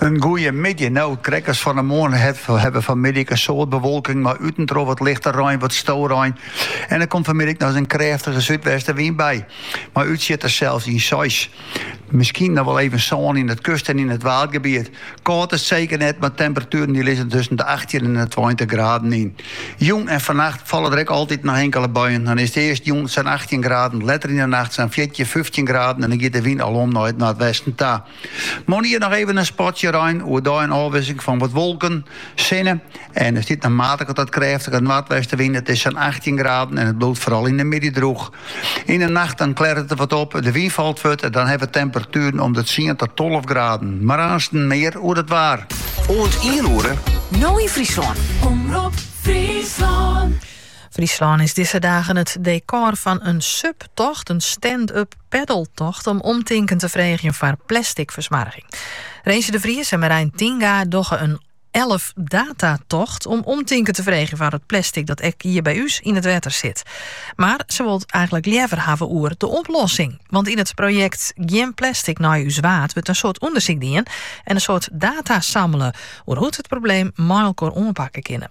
In goeie middei. No, krekt as fan 'e moarn hawwe we fanmiddei in soad bewolking mei út en troch wat lichte rein, wat storein. En der komt fanmiddei noch in krêftige súdwestenwyn by, mei útsjitters sels in seis. Miskien noch wol even sân yn it kust en yn it waadgebiet. Kâld is it seker net, mar temperatueren dy lizze tusken de achttjin en de tweintich graden yn. Jûn en fannacht falle der ek altyd noch inkele buien. Dan is it earst jûn sa'n achttjin graden, letter yn 'e nacht sa'n fjirtjin, fyftjin graden en dan giet de wyn alom nei it noardwesten ta. Moarnier noch even in spotje rein, oerdei in ôfwisseling fan wat wolken, sinne en der stiet in matige tot krêftige noardwestewyn. It is sa'n 18 graden en it bliuwt foaral yn de middei droech. Yn 'e nacht dan klearret it wat op, de wyn falt fuort en dan hawwe we temperatueren om de tsien tot tolve graden. Mar aansten mear oer it waar. Oant ien oere, No yn Fryslân. Omrop Fryslân. Fryslân is dizze dagen it dekor fan in SUP-tocht, in stand-up paddeltocht, om omtinken te freegjen foar plasticfersmoarging. Rensje de Vries en Merijn Tinga dogge in 11 data-tocht om omtinken te freegjen foar it plastic dat ek hjir by ús yn it wetter sit. Mar se wolle it eigenlik leaver hawwe oer de oplossing. Want yn it projekt Gjin plastic nei ús waard wurdt in soad ûndersyk dien en in soad data sammele oer hoe't we it probleem mei elkoar oanpakke kinne.